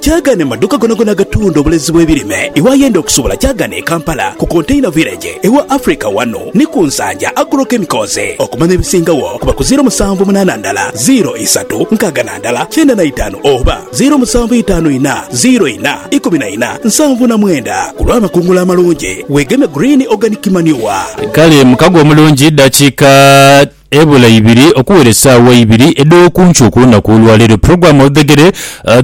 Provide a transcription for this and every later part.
Kyagane mu maduuka gonagona agatunda obulezi bw'ebirime. Iwayenda okusubula kyagane e Kampala ku Container Village ewa Africa wanu ni ku Nsanja Agro Chemicals. Okumanya ebisingagho kuba ku ziiro musanvu munaana ndala ziiro isatu nkaaga na ndala kyenda na itaanu oba ziiro musanvu itaanu ina ziiro ina ikumi na ina nsanvu na mwenda. Ku lw'amakungula amalungi weegeme Green Organic Manure. Kale mukago omulungi dakiika. Ebula ibiri okuwera esaawa ibiri edh'okunkyo ku lunaku olwa leero, Program Oludhegere,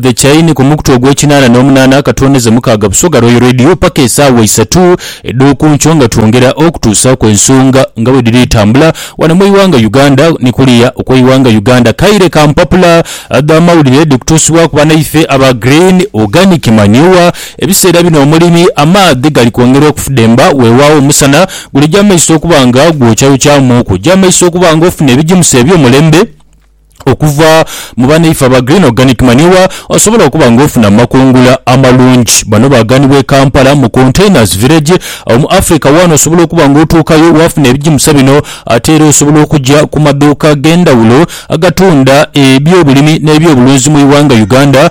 The Chain, ku mukutu ogw'ekinaana n'omunaana akatoonheze mukaaga Busoga Royal Radio paka esaawa isatu edh'okunkyo nga twongera okutuusaaku ensonga nga bwedhiri etambula wano mu ighanga Uganda ni kuliya okweighanga Uganda. Kaire ka mpapula dha mawulire dhikutuusibwaku banaife aba Green Organic Manure Ebiseera bino omulimi amaadhi gali kwongera okufudemba, weewaawo omusana gulija maiso okuba nga gwokyayokyaamu okugya maiso okuba nga ofuna ebigimusa eby'omulembe okuva mu banaife aba Green Organic Manure osobola okuba nga ofuna mu makungula amalungi. Bano baaganibwa e Kampala mu Containers Village awo mu Africa waana osobola okuba nga otuukayo waafuna ebigimusa bino ate era osobola okugya ku madhuuka ag'endhawulo agatunda eby'obulimi n'ebyobulunzi mu ighanga Uganda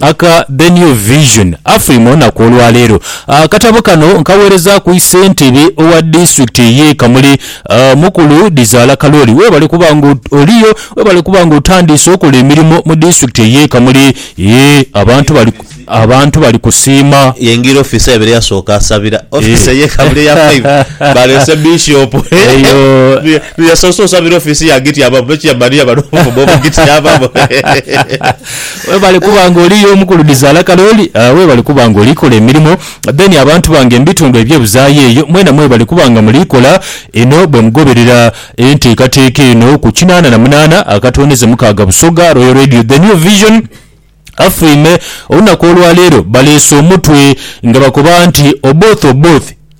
Aka The New Vision afulima olunaku olwaleero. Akatabo kano nkagheerezaaku Isentebe owa disitulikiti ye Kamuli, Mukulu Dhizaala Kalooli webale kuba nga oliyo, webale kuba nga otandiise okola emirimo mu disitulikiti eye Kamuli eeh abantu bali abantu bali kusiima. Yengira office yabeire yasooka asabira office eye Kamuli eya five baleese Bishop eyo yasoose osabira office yagityamamu nokyamaniya bano obuvumo bugityamamu. Webale kuba nga oli y'omu ku ludhizaala kale oli. Webale kuba nga oli kola emirimo. Then abantu bange mu bitundu eby'ebuzaayo eyo, mwena mwebale kuba nga muli kola inho bwe mugoberera enteekateeka eno ku kinaana na munaana akatwoneze mukaaga Busoga Royal Radio The New Vision FM. Olunaku olwa leero baleese omutwe nga bakoba nti Oboth Oboth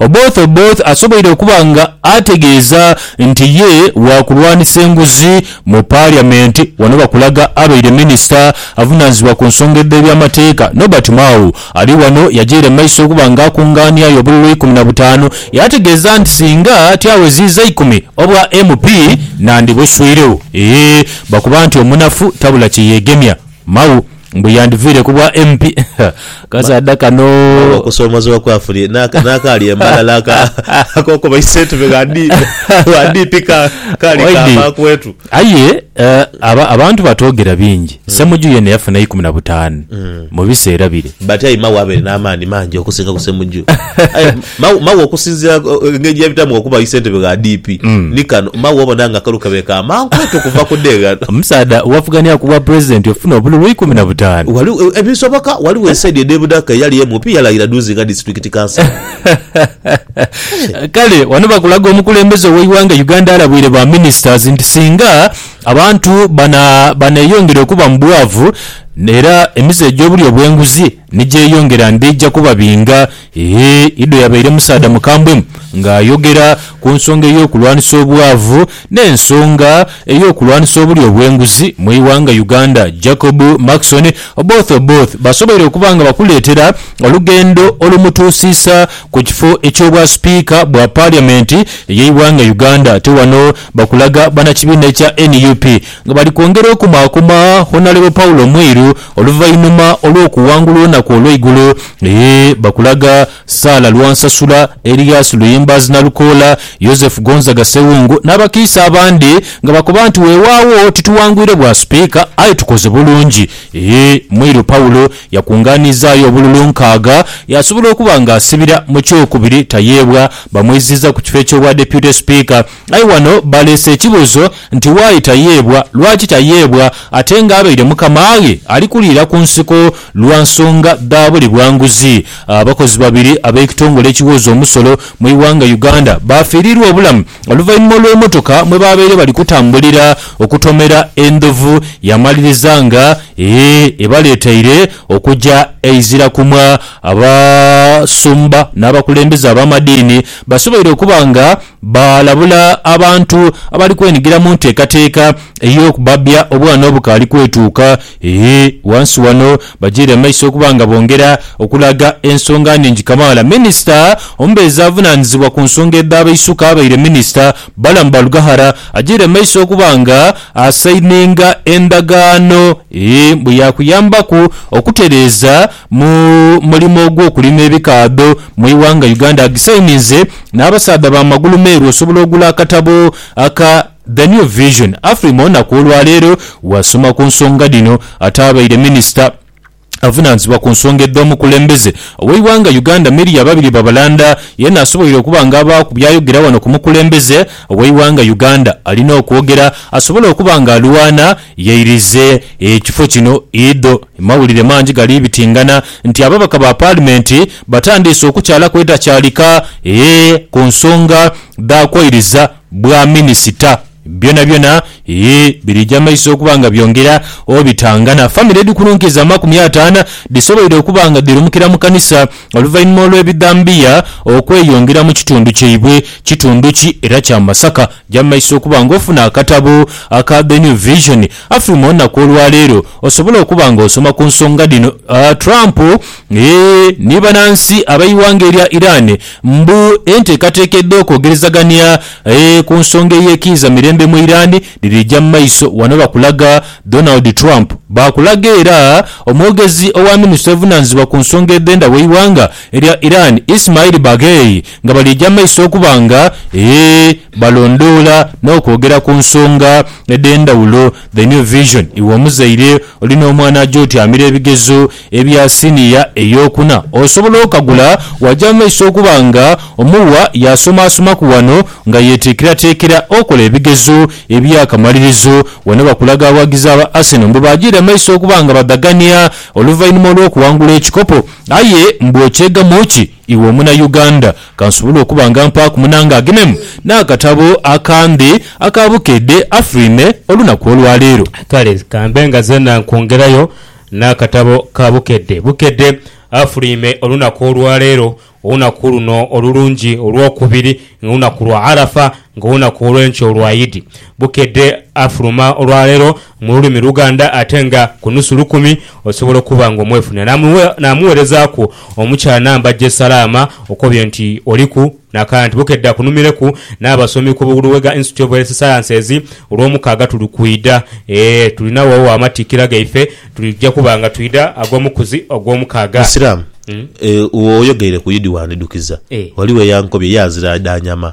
Oboth Oboth asoboire okuba nga ategeeza nti ye wa kulwanisa enguzi mu Paliamenti wano bakulaga abaire minisita avunanizibwa ku nsonga edh'ebyamateeka Nobert Mao ali wano yajaire mu maiso okuba nga akungaaniayo obululu ikumi na butaanu yategeeza nti singa tyaweziiza ikumi obwa MP nandibuswiiregho eeh bakuba nti omunafu tabula kyeyegemya. Mau, mbu yandiviire ku bwa MP. Kasaadha kano. Mau okusoomozebwa kwafurie n'akaali e Mbalala ak'okuba isentebe gha DP kaali kaava kwetu. Aye abantu batoogera bingi. Ssemuju yeene yafuna eikumi na butaanu mu biseera bire. But aye Mau abaire n'amaani mangi okusinga ku Ssemuju. Aye ma- mawe okusinzira uh, engeri gyebitamu okuba isentebe gha DP Mm. ni kano mawe obona nga akalu kabe ka mankwetu okuva ku deeghano Omusaadha wavugania ku bwa president ofuna obululu ikumi na butaanu. Wali, eh, ebisoboka waliwo esaidi edebudaka eyali MP yalayira duuzi nga disitulikiti kansala Kale wano bakulaga omukulembeze oweighanga Uganda alabwire ba ministers nti singa abantu bana baneyongera okuba mu bwavu era emize egyobulyo bwenguzi Ni gyeyongera ndija kubabinga. Ee, idho yabaire musaadha mukambwe ng'ayogera ku nsonga ey'okulwanisa obwavu n'ensonga ey'okulwanisa obulyo obw'enguzi mu ighanga Uganda. Jacob Maxon, Oboth Oboth basoboire okuba nga bakuleetera olugendo olumutuusiisa ku kifo eky'obwa Sipiika bwa Parliament ey'eighanga Uganda. Ate wano bakulaga banakibiina ekya nup Nga bali kwongera okumaakuma Honalebo Paulo Mwiru oluvainhuma olw'okuwangula olunaku olweigulo, eeh bakulaga Saala Lwansasula, Elias Luyimbaazi Nalukoola, Yozefu Gonzaga Sewungu n'abakiise abandi nga bakoba nti wewaagho tituwangwire bwa Sipiika aye tukoze bulungi eeh Mwiru Paulo yakunganizaayo obululu nkaaga yasobola okuba nga asibira mu kyokubiri tayeebwa bamwiziiza ku kifo eky'obwa Deputy Sipiika Aye ghano baleese ekibuuzo nti why tayeebwa, lwaki tayeebwa ate nga abaire mukamaaghe ali kuliira ku nsiko lwa nsonga dha buli bwa nguzi. Abakozi babiri ab'ekitongole ekiwooza omusolo mu ighanga Uganda baafiiriirwa obulamu oluvainhuma olw'emotoka mwe baabaire bali kutambulira okutomera endhovu yamaliriza nga ebaleeteire okuja eizira kumwa. Abasumba n'abakulembeze ab'amadiini basoboire okuba nga. Baalabula abantu abali kwenhigira mu nteekateeka ey'okubabya obwana obukaali kwetuuka e Wansi wano bagyeere maiso okuba nga bongera okulaga ensonga nhingi kamaala. Minisita omubeezi avunaanizibwa ku nsonga edh'abaisuka abaire minisita, Balaam Barugahara agyeere maiso okuba nga asayininga endagaano e bweyakuyambaku okutereeza Mu mulimo ogw'okulima ebikaadho mu ighanga Uganda agisayininze n'abasaadha ba magulu meeru osobola ogula akatabo aka The New Vision. Afrima onaku olwaleero wasoma ku nsonga dhino ate abaire minisita avunanzibwa ku nsonga edh'omukulembeze ow'eighanga Uganda Miria Babirye Babalanda yena asoboire okuba nga abaaku byayogera wano ku mukulembeze ow'eighanga Uganda alina okwogera asobole okuba nga alwana yairize ekifo kino idho Mawulire mangi gali bitingana nti ababaka ba paalimenti batandiise okukyalaku edhakyalika e ku nsonga dha kwairiza bwa minisita. Byonabyona e birija maiso okuba nga byongera obitangana. Famire edhikununkiiza amakumi ataana dhisoboire okuba nga dhirumukira mu kanisa oluvainhuma olw'ebidhambiya okweyongera mu kitundu kyaibwe. Kitundu ki era kya Masaka? Ja mumaiso okuba nga ofuna akatabo aka The New Vision Afe mu olunaku olwaleero osobola okuba nga osoma ku nsonga dhino, Trump eeh ni banansi abeighanga erya Iran mbu enteekateeka edh'okwogerezagania eeh ku nsonga eyekiiza mirembe mu Iran dhirija mu maiso wano bakulaga Donald Trump baakulaga era omwogezi owa ministry evunanizibwa ku nsonga edhendha weighanga erya Iran Ismail Baghei nga bali eja maiso okuba nga ee balondoola n'okwogera ku nsonga edh'endhawulo. The New Vision, Iwe omuzaire olina omwana aja otyamira ebigezo ebya siniya ey'okuna, osobola okagula waja mu maiso okuba nga omuwa yaasomaasomaku wano nga yeeteekerateekera okola ebigezo eby'akamalirizo. Wano bakulaga abawagizi aba Arsenal mbu baajiira mu maiso okuba nga badhagania oluvainhuma olw'okuwangula ekikopo. Aye mbu okyegamu ki? Iwe omuna Uganda, kansobole okuba nga mpaaku munange agenemu n'akatabo akandi aka Bukedde Afrine olunaku olwa leero. Kale kambe nga zeena nkwongerayo n'akatabo ka Bukedde, Bukedde Afrine olunaku olwa leero, olunaku luno olulungi olw'okubiri nga lunaku lwa Arafa, nga olunaku olw'enkya olwa Idi. Bukedde Afrima olwa leero. mu lulimi Luganda ate nga ku nusu lukumi osobola okuba nga omwefunira n'amuweerezaaku omukyala namba je salaama okobye nti oliku n'akanti. Bukedde akunumireku n'abasomi ku Luwega Institute of Health Sciences. Ku Lwomukaaga tuli kwidha ee tulina woo amatikkira gaife tuja kuba nga twidha ag'omukuzi Ogwomukaaga. Musiraamu, Oyogeire ku Idi wandidhukiza. Ghaligho eyankobye ye azira dha nyama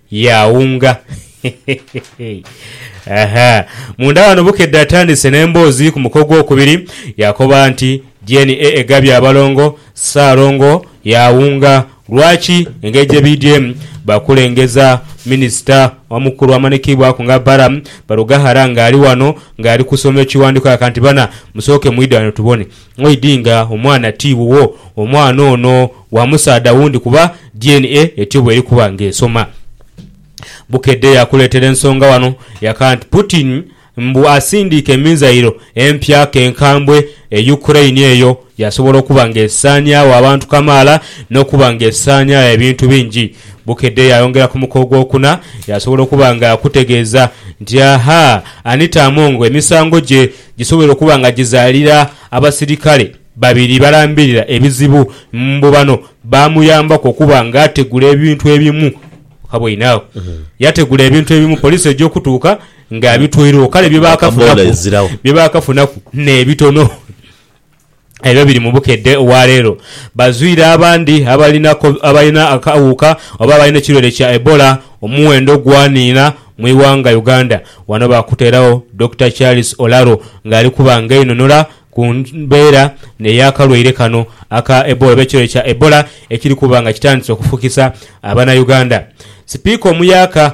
Yaawunga. Ahaa. Munda ghano Bukedde atandise n'emboozi ku muka ogwokubiri. Yaakoba nti, DNA egabye abalongo, Ssaalongo yaawunga. Lwaki? Engeri gye biidyemu, baakulengeza minisita omukulu amanikibwaku nga Balaam Barugahara ng'ali ghano ng'ali kusoma ekiwandiiko kya Kantibana. Musooke mwidhe ghano tubone. Ngoidi nga omwana ti wuwo, omwana ono wa musaadha wundi kuba DNA etyo bw'erikuba ng'esoma. Bukedde yaakuleetera ensonga wano yaka nti Putin mbu asindiike mizairo empya ke nkambwe e Ukraine eyo yaasobola okuba ng'esaanyaawo abantu kamaala n'okuba ng'esaanyaawo ebintu bingi. Bukedde yaayongera ku muko ogwokuna yaasobola okuba ng'akutegeeza nti, Ahaa, Anita Among emisango gye gisobola okuba nga gizaalira abasirikale babiri balambirira ebizibu mbu bano baamuyambaku okuba ng'ategula ebintu ebimu. Waboine agho? Yategula ebintu ebimu poliisi eja okutuuka ng'abitwairegho kale bye Akaboola baakafunaku ezirawo. bye baakafunaku n'ebitono. Ebyo biri mu bukedde obwa leero. Bazwire abandi abalinaku abalina akawuuka oba abalina ekirwaire kya Ebola omuwendo gwaniina mu ighanga Uganda. Wano baakuteeragho Dokita Charles Olaro nga ali kuba ng'einhonhola ku mbeera ey'akalwaire kano aka Ebola oba ekirwaire kya Ebola ekiri kuba nga kitandise okufukisa Abanauganda. Sipiika omuyaaka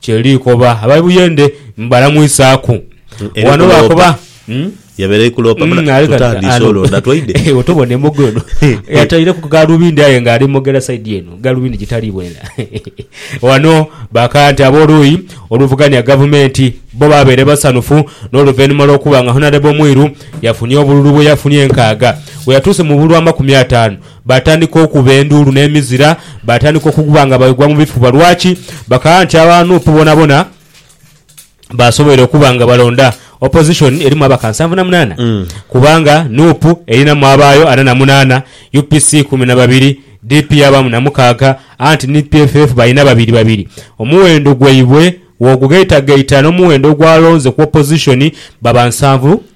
Kye likoba aba Buyende mbalamwisaaku wano lwakuba yabaire ali kuloopa muna tutandiise olwo na twaidhe. Tobona emogo eno yataireku galubindi aye nga ali mogera saidi eno galubindi gitali bwela. Wano bakaya nti ab'oluuyi oluvugania Gavumenti bbo baabaire basanhufu n'oluvainhuma lw'okuba nga Honarebo Mwiru yafunye obululu bwe yafunye enkaaga bwe yatuuse mu bululu amakumi ataanu. Baatandika okukuba enduulu n'emizira, baatandika okukuba nga baigwa mu bifuba. Lwaki? Bakagamba nti aba nup bonabona basoboire okuba nga balonda opposition erimu ababaka nsanvu na munaana kubanga nup erinamu abaayo ana na munaana, UPC ikumi na babiri, DP yabaamu na mukaaga anti ni PFF balina babiri babiri. Omuwendo gwaibwe bw'ogugaitagaita n'omuwendo ogwalonze ku opposition baba nsanvu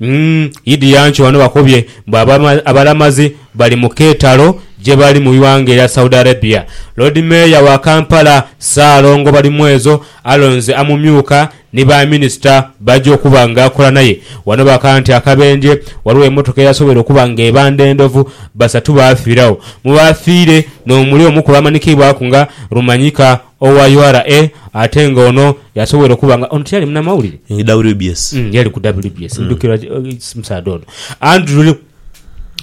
Umm Idi Yancho wano bakobye mbu abalamazi bali mu keetalo gyebali mu ighanga erya Saudi Arabia. Loodi Meeya wa Kampala Ssaalongo Balimwezo alonze amumyuka ni ba minisita b'aja okuba nga akola naye. Wano baka nti akabenje waliwo emotoka eyasobweire okuba nga ebanda endhovu basatu baafiiragho mu baafiire n'omuli omu ku baamanikiibwaku nga Rumanyika Owa ura ate nga ono yasobola okuba nga ono tiyali munamawulire? WBS. Mm, yali ku WBS. Ndhukira ki- eh, omusaadha ono. Andrew Lu-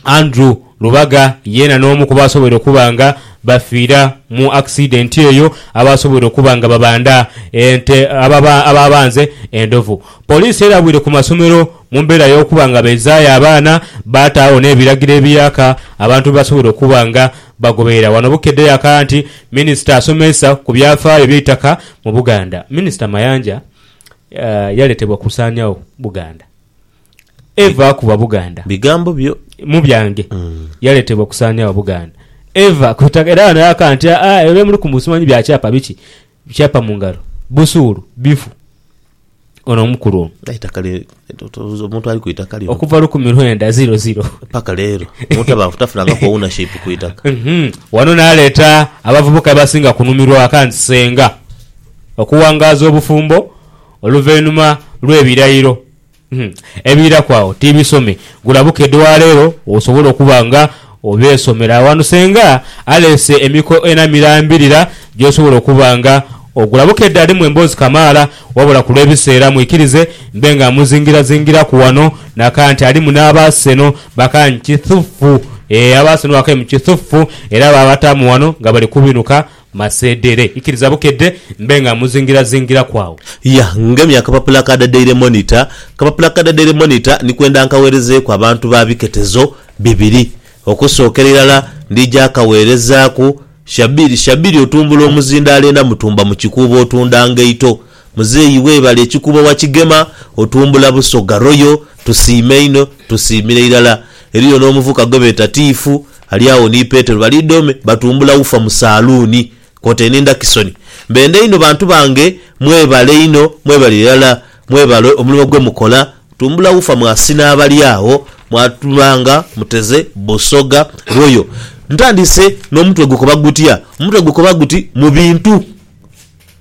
Andrew Lubaga yeena n'omu ku baasobola okuba nga bafiira mu akisidenti eyo abaasobola okuba nga babanda ente ababa- abaabanze endhovu. Poliisi erabwire ku masomero Mu mbeera y'okuba nga baizaayo abaana, baataagho n'ebiragiro ebiyaaka abantu bye basobola okuba nga bagoberera. Wano Bukedde yaakaya nti Minisita asomeesa ku byafaayo by'eitaka mu Buganda. Minisita Mayanja yaletebwa kusaanyagho Buganda. Eva ku Bwabuganda. Bigambo byo. Mu byange. Yaletebwa kusaanyagho Buganda. Eva ku itaka. Era wano yaakaya nti, Aa, ebyo bye muli ku simanyi bya kyapa biki. Kyapa mu ngalo, busuulu, bifu. Ono omukulu ono. Aye eitaka lye totooza omuntu ali ku itaka lino. Okuva lukumi lwenda ziro ziro. Paka leero omuntu aba tafunangaku ownership ku itaka. Wano naleeta abavubuka abasinga kunhumirwa waka nti Ssenga, okuwangaaza obufumbo oluvainhuma lw'ebirayiro Ebiiraku agho tiibisome. Gula buka edwaalero osobole okuba nga obeesomera aghano senga aleese emiko ena mirambirira gy'osobola okuba nga ogula buka edda alimu emboozi kamaala wabula ku lw'ebiseera mwikirize mbe nga mmuzingirazingiraku wano naka nti alimu n'Abaaseno bakankithuffu. Eeh Abaaseno bakaimukithuffu era baabataamu wano nga bali kubinuka Masedere, ikiriza bukedde mbe nga muzingiraazingiraku agho. Ya, ngemya akapapula ka The Daily Monitor. Akapapula ka The Daily Monitor ni kwenda nkagheerezeeku abantu ba biketezo bibiri. Okusookera irala ndija kagheerezaaku Shabiri. Shabiri otumbula omuzindaalo ena mutumba mu kikuubo otunda ngaito. Muzeeyi webale ekikuubo wakigema otumbula busoga royal tusiima inho tusiimira irala eriyo nomuvuka gwebeeta tiifu ali agho ni petero bali dome batumbula ufa mu saluuni kwotaire ni ndakisoni mbenda inho bantu bange mwebale inho mwebale irala mwebale omulimo gwemukola tumbula ufa mwasina abali agho mwatuba nga muteze busoga royal ntandise nomutwe gukoba gutya omutwe gukoba guti mu bintu.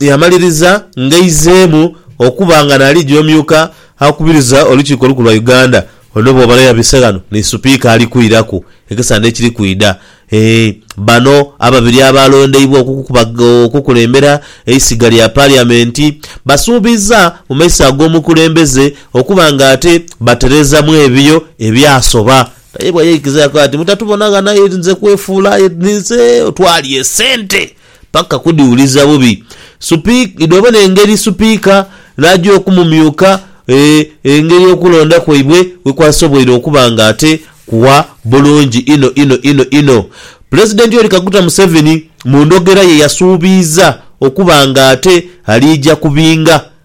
Yamaliriza ng'aizeemu okuba nga naali gy'omyuka akubiriza Olukiiko Olukulu lwa Uganda. Ono bw'oba n'oyabise ghano ni Supiika ali kwiraku ekisande ekiri kwidha. Ee, bano ababiri abaalondeibwa okukulembera eisiga lya Paliyamenti basuubizza mu maiso ag'omukulembeze okuba ng'ate batereezamu ebyo ebyasoba. Naye bweyaikiza yakoba ati, Mutatubonagho naye nze kwefuula aye ninze otwalya esente. Paka kudhiwuliza bubi. Supik, idho bona engeri Supika n'aja okumumyuka e, engeri okulonda kwaibwe bwe kwasoboire okuba nga ate kugha bulungi inho inho inho inho. Pulezidenti Yoweri Kaguta Museveni mu ndhogera ye yasuubiiza okuba nga ate aliija ku binga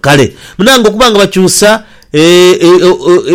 Kale, munange, okuba nga bakyusa e, e,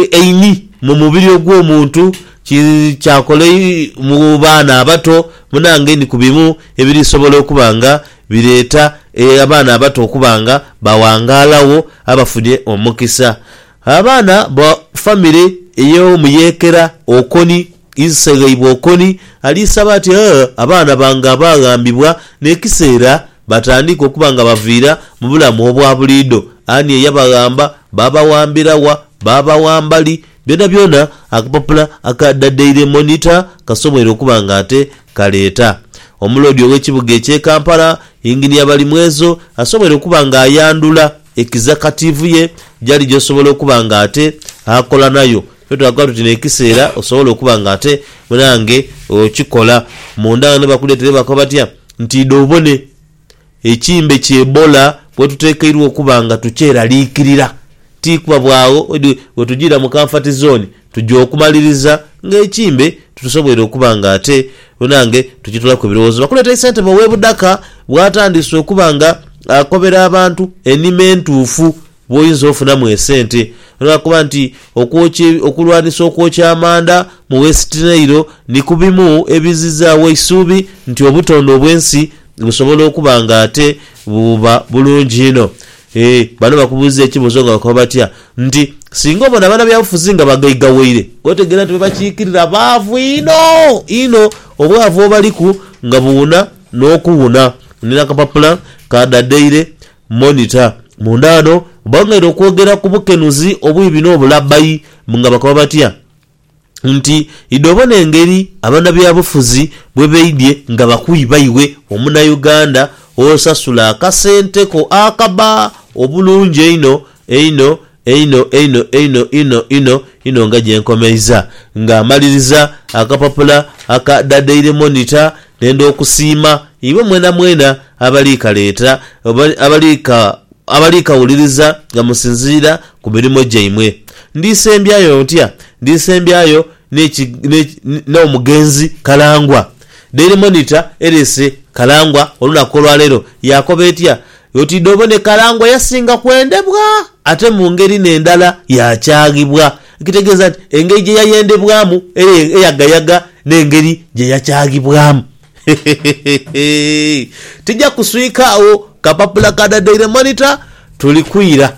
e, eini mu mubiri ogw'omuntu ki, kyakola i, mu baana abato, munange, ni ku bimu ebirisobola okuba nga bireeta e, abaana abato okuba nga bawangalagho abafunye omukisa. Abaana ba famire ey'omuyeekera okoni. Ise Ghaibwokoni ali saba ati a abaana bange abaaghambibwa n'ekiseera batandiike okuba nga baviira mu bulamu obwa buliidho. Ani eyabaghamba? Baabaghambira wa? Baabaghamba li? Byonabyona akapapula aka The Daily Monitor kasoboire okuba nga ate kaleeta. Omuloodi ow'ekibuga eky'e Kampala, Yinginiya Balimwezo asoboire okuba nga ayandhula ekizakatiivu ye gyali gy'osobola okuba nga ate akola nayo Ffe twagala tuti n'ekiseera osobole okuba nga ate munange okikola. Munda ghano bakuleeta era bakoba batya nti idha obone ekimbe ki Ebola bwetutekeirwa okuba nga tukyeraliikirira. Ti kuba bwagho odi wetujiira mu Comfort Zone, tuja okumaliriza ng'ekimbe tusoboire okuba nga ate munange tukitolaku ebirowoozo. Bakuleeta Ssentebe ow'e Budaka bwatandise okuba nga akobera abantu enima entuufu bw'oyinza ofunamu esente olwa kuba nti okwokya okulwanisa okwokya amanda mu West Nile ni ku bimu ebizzizaawo eisuubi nti obutonde obw'ensi busobola okuba nga ate buba bulungi inho. Eeh bano bakubuuza ekibuuzo nga bakoba batya nti, Singa obona banabyabufuzi nga bagaigawaire, otegeera nti bebakiikirira baavu inho inho obwavu obaliku nga buwuna n'okuwuna. Nina akapapula ka Da Daily. Monitor. Munda ghano bangaire okwogera ku bukenuzi obwiibi n'obulabbayi nga bakoba batya nti idho bona engeri abanabyabufuzi bwebaidhye nga bakwiiba iwe omunauganda osasula akasente ko akabba obulungi einho einho Einho, einho, einho, inho, inho, inho nga gye nkomeiza. Nga mmaliriza akapapula aka The Daily Monitor, nenda okusiima iwe mwenamwena abali kaleeta, abali ka, abali kawuliriza nga musinziira ku mirimo gyaimwe. Ndisembyayo ntya? Ndisembyayo n'eki, n'eki, n'omugenzi Kalangwa. Daily Monitor ereese Kalangwa olunaku olwa leero. Yaakoba etya? Yoti dh'obona ekalangwa yasinga kwendebwa ate mu ngeri n'endala yaakyaghibwa. Ekitegeeza nti engeri gye yayendebwamu era eyagayaga n'engeri gye yakyaghibwamu. Hehehehehehe! Tija kuswika agho, kapapula ka The Daily Monitor tuli kwira.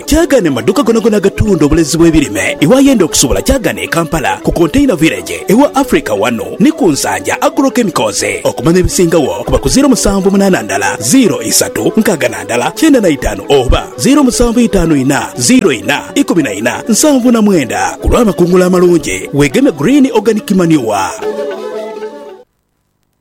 Kyagane maduuka gonagona agatunda obulezi bw'ebirime iwe ayenda okusuubula Kyagane e Kampala ku Container Village ewa Africa wano ni ku Nsanja Agro Chemicals. Okumanya ebisingagho kuba ku ziiro musanvu munaana ndala ziiro isatu nkaaga na ndala kyenda na itaanu oba ziiro musanvu itaanu ina ziiro ina ikumi na ina nsanvu na mwenda. Ku lw'amakungula amalungi weegeme Green Organic Manure.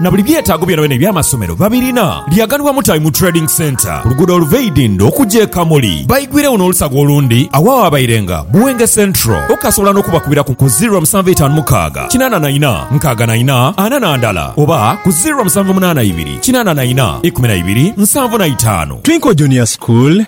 na buli byetaago byonabyona eby'amasomero babirina. Lyaganibwa Mutabi mu Trading Centre ku luguudo oluva e Idindho okuja e Kamuli. Baigwiregho n'olusaga olundi agho awaabairenga Buwenge Central. Okasobola n'okubakubira ku ku ziro musanvu etaanu mukaaga kinaana na ina nkaaga na ina ana na ndala oba ku ziro musanvu munaana ibiri kinaana na ina ikumi na ibiri nsanvu na itaanu. Twinkle Junior School.